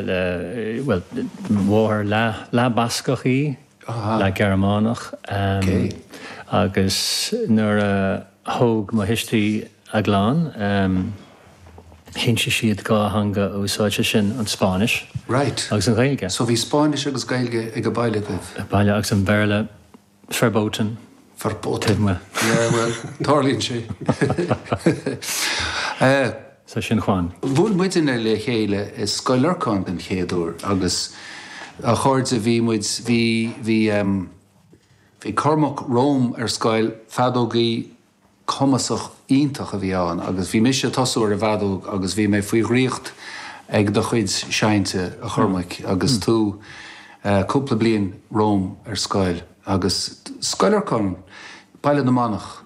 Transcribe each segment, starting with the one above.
le, bhuel, mo mháthair leath-Bhascach í, leath-Ghearmánach, agus nuair a thóg mo thuistí a gclann, chinntigh siad dhá theanga a úsáid, sé sin, an Spáinnis agus an Ghaeilge. So bhí Spáinnis agus Gaeilge ag baile agaibh? Ag baile, agus an Béarla. Verboten. Verboten. Yeah, well, tarlaíonn sé. Sea, sin Juan. Bhuail muidne le chéile i Scoil Lorcáin den chéad uair agus a chairde, bhí muid, bhí, bhí ehm, bhí Cormac romham ar scoil, feadógaí, cumasach iontach a bhí ann agus bhí mise ag tosú ar an bhfeadóg agus bhí mé faoi dhraíocht ag do chuid seinnte a Chormaic agus tú cúpla bliain romham ar scoil agus Scoil Lorcáin, Baile na Manach.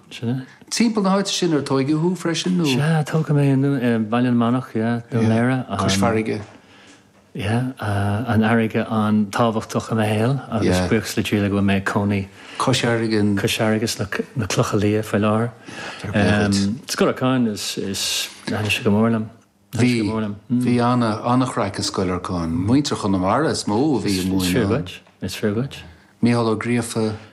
Timpeall na háite sin ar tóigeadh thú freisin nó? Sea, tógadh mé i mBaile na Manach, yeah, Dún Laoghaire. Cois farraige. Yeah, an fharraige an-tábhachtach i mo shaol agus buíochas le Dia go bhfuil mé i mo chónaí cois farraige, cois farraige sna, na Clocha Liatha faoi láthair. Fair play dhuit. Scoil Lorcáin is is thaitin sé go mór liom. Bhí, bhí ana, an-chraic i Scoil Lorcáin. Muintir Chonamara is mó a bhí ag múineadh ann. Is fíor dhuit, is fíor dhuit. Mícheál Ó Gríofa.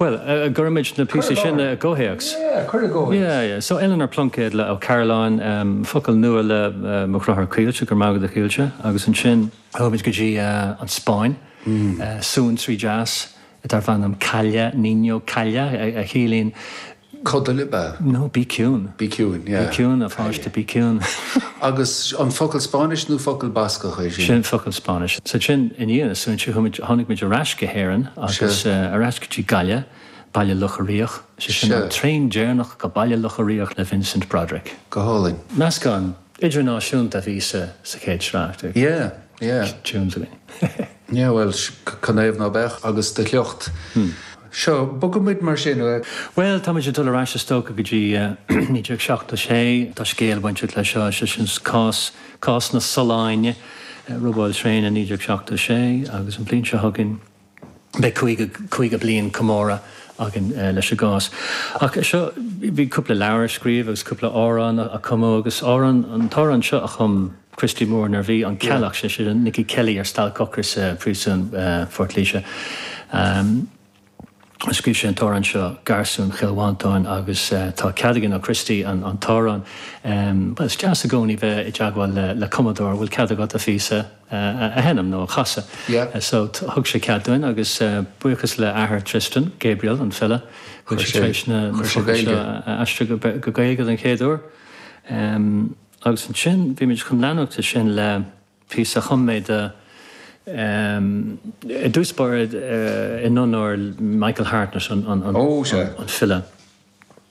Bhuel, go gcuirimid na píosaí sin i gcomhthéacs. Yeah, cuir i gcomhthéacs. Yeah, so Eleanor Plunkett le Ó Cearbhalláin, focal nua le mo dheartháir Caoilte, go raibh maith agat a Chaoilte, agus ansin chuaigh muid go dtí an Spáinn, suantraí deas darbh ainm Calla, Niño, Calla, a chiallaíonn Codail ab ea? No, bí ciúin. Bí ciúin, yeah. Bí ciúin, a pháiste, bí ciúin. Agus an focal Spáinnis nó focal Bascach é sin? Sin focal Spáinnis. So ansin, i ndiaidh na suantraí, chuaigh muid, tháinig muid ar ais go hÉirinn agus ar ais go dtí Gaillimh, Baile Locha Riach. Sé sin an traein deireanach go Baile Locha Riach le Vincent Broderick. Go hálainn. Meascán idirnáisiúnta a bhí sa chéad sraith. Yeah, yeah. Tunes a bhí. Yeah, bhuel, cén chaoi nach mbeadh agus do shliocht. Seo, bogfaimid mar sin. Bhuel, táimid ag dul ar ais is dócha go dtí 1976. Tá scéal bainteach leis seo, sé sin cás, cás na Sollán, robáil traenach 1976 agus an bhliain seo chugainn. beidh caoga bliain comóradh againn leis an gcás. Ach seo, bhí cúpla leabhar a scríobhadh agus cúpla amhrán a cumadh agus amhrán, an t-amhrán seo a chum Christy Moore nuair a bhí an Ceallach, sé sin Nicky Kelly ar stailc ocrais i bpríosún Phort Laoise. Scríobh sé an t-amhrán seo, Garsún Chill Mhantáin agus tá cead againn ó Christy an t-amhrán, bhuel is deas i gcónaí bheith i dteagmháil le cumadóir, bhfuil cead agat an píosa, a sheinm nó a chasadh. So thug sé cead dúinn agus buíochas le athair Tristan, Gabriel, an file, tá sé tar éis na focail seo a aistriú go Gaeilge don chéad uair. Agus ansin beimid chun leanúint de sin le píosa a chum mé dó i dtús báire in onóir Michael Hartnett, an file.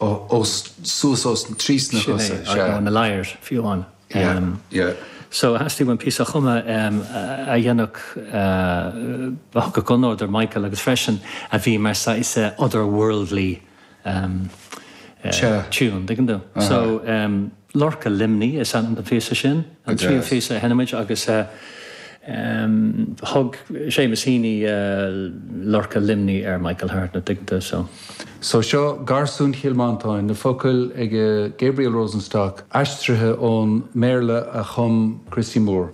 os suas os trí sna Sin é, cosa, sea. nó in a lair, fiú amháin. Yeah, yeah. So it has to be when píosa a chumadh a dhéanfadh, a thabharfadh onóir do Michael agus freisin a bhí mar saghas other worldly tune, dtuigeann tú. So. Lorca Luimnigh is ainm don phíosa sin, an tríú phíosa a sheinnfimid agus thug Seamus Heaney Lorca Luimnigh ar Michael Hartnett, tuigeann tú, so. So seo Garsúin Chill Mhantáin, na focail ag Gabriel Rosenstock, aistrithe ón mBéarla a chum Christy Moore.